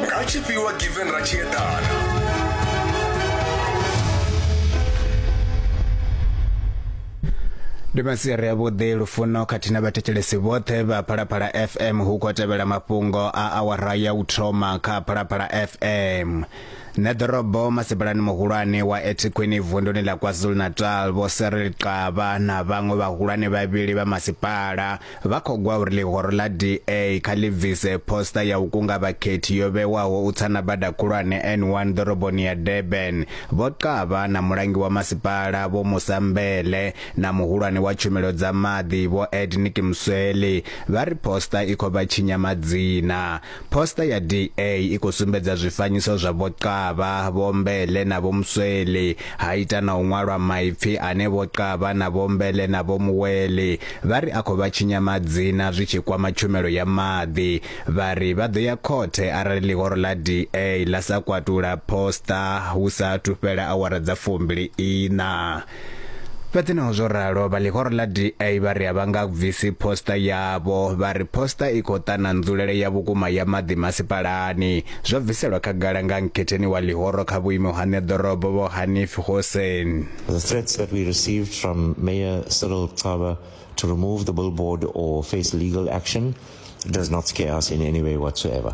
nga tshifhiwa given ra tshi eḓana ndi masiari avhuḓi lufuno khathihi na vhathetshelesi vhoṱhe vha phalaphala fm hu khou tevhela mafhungo a awara ya u thoma kha phalaphala fm nṋe ḓorobo masipalani muhulwane wa etikhwini vunduni ḽa kwazulu-natal vho seril qava na vhaṅwe vhahulwane vhavhili vha masipala Vha khou gwa uri ḽihoro ḽa DA kha ḽi bvise phosta ya u kunga vhakhethi yo vhewaho u tsa na bada khulwane N1 ḓoroboni ya Durban. Vho Xaba na mulangi wa masipala Vho Musa Mbele na muhulwane wa tshumelo dza maḓi Vho Ed Nikimsweli vha ri phosta i khou vha tshinya madzina. Poster ya DA i khou sumbedza zwifanyiso zwa Vho Xaba, Vho Mbele na Vho Musweli, ha ita na u ṅwalwa maipfi ane Vho Xaba na Vho Mbele na Vho Muweli vha ri a khou vha tshinya madzina zwi tshi kwama tshumelo ya maḓi. Vha ri vha ḓo ya khothe arali ḽihoro ḽa DA ḽa sa kwatula poster hu sa athu fhela awara dza fumbili iṋa. Fhedzi naho zwo ralo, vha ḽihoro ḽa DA vha ri a vha nga bvisi poster yavho. Vha ri poster i khou ṱana nzulele ya vhukuma ya maḓi masipalani. Zwo bviselwa khagala nga nkhetheni wa ḽihoro kha vhuimo ha ṋeḓorobo Vho Hanif Hoosen. The threats that we received from Mayor Cyril Xaba to remove the billboard or face legal action does not scare us in any way whatsoever.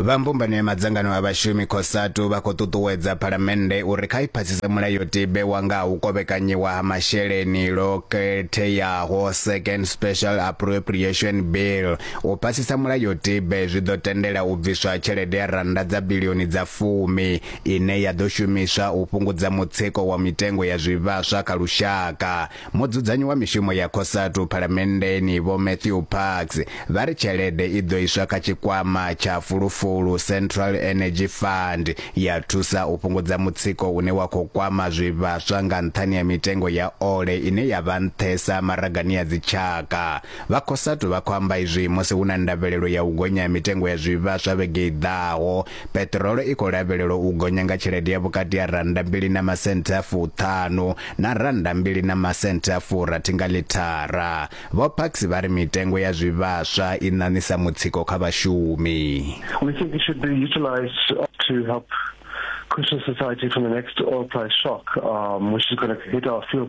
Vha mbumbano ya madzangano a vhashumi Cosatu vha khou ṱuṱuwedza phalamennde uri kha i phasise mulayotibe wa nga ha u kovhekanyiwa ha masheleni lwo khetheaho Second Special Appropriation Bill. U phasisa mulayotibe zwi ḓo tendela u bviswa tshelede ya rannda dza bilioni dza fumi ine ya ḓo shumiswa u fhungudza mutsiko wa mitengo ya zwivhaswa kha lushaka. Mudzudzanyi wa mishumo ya Cosatu Phalamenndeni Vho Matthew Parks vha ri tshelede i ḓo iswa kha tshikwama tsha fulufulu, Central Energy Fund, ya thusa u fhungudza mutsiko une wa khou kwama zwivhaswa nga nṱhani ha mitengo ya ole ine ya vha nṱhesa maragani a dzitshaka. Vha Cosatu vha khou amba izwi musi hu na ndavhelelo ya u gonya ha mitengo ya zwivhaswa vhege i ḓaho Peṱirolo i khou lavhelelwa u gonya nga tshelede ya vhukati ha rannda mbili na masenthe a fuṱhanu na rannda mbili na masenthe a furathi nga ḽithara. Vho Parks vha ri mitengo ya zwivhaswa i ṋaṋisa mutsiko kha vhashumi. We think it should be utilised to help cushion society from the next oil price shock, um, which is going to hit our fuel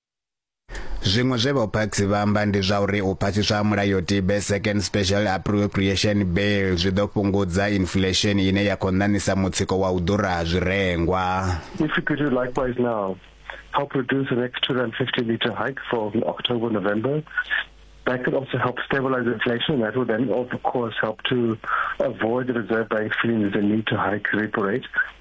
Zwiṅwe zwe vho Parks vha amba ndi zwa uri u phasiswa ha mulayotibe Second Special Appropriation Bill zwi ḓo fhungudza inflation ine ya khou ṋaṋisa mutsiko wa u ḓura ha zwirengwa. If we could do likewise now, help reduce the next 250 litre hike for October, November, that could also help stabilize inflation. That would then, of course, help to avoid the Reserve Bank feeling the need to hike repo rate.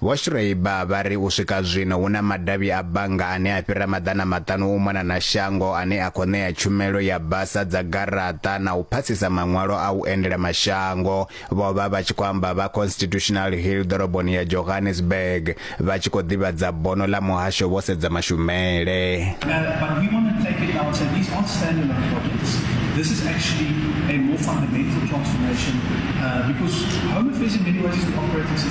Vho Schreiber vha ri u swika zwino hu na madavhi a bannga ane a fhira maḓana maṱanu u mona na shango ane a khou ṋea tshumelo ya basa dza garaṱa na u phasisa maṅwalo a u endela mashango. Vho vha vha tshi khou amba vha Constitutional Hill ḓoroboni ya Johannesburg vha tshi khou ḓivhadza bono ḽa muhasho vho sedza mashumele. This is actually a more fundamental transformation uh, because home affairs in many ways is the operating system.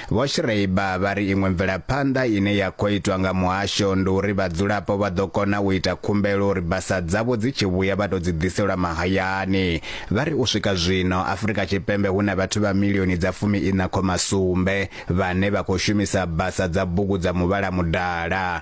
Vho Schreiber vha ri iṅwe mvelaphanḓa ine ya khou itwa nga muhasho ndi uri vhadzulapo vha ḓo kona u ita khumbelo uri basa dzavho dzi tshi vhuya vha tou dzi ḓiselwa mahayani. Vha ri u swika zwino Afrika Tshipembe hu na vhathu vha milioni dza fumi-iṋa khoma sumbe vhane vha khou shumisa basa dza bugu dza muvhala mudala.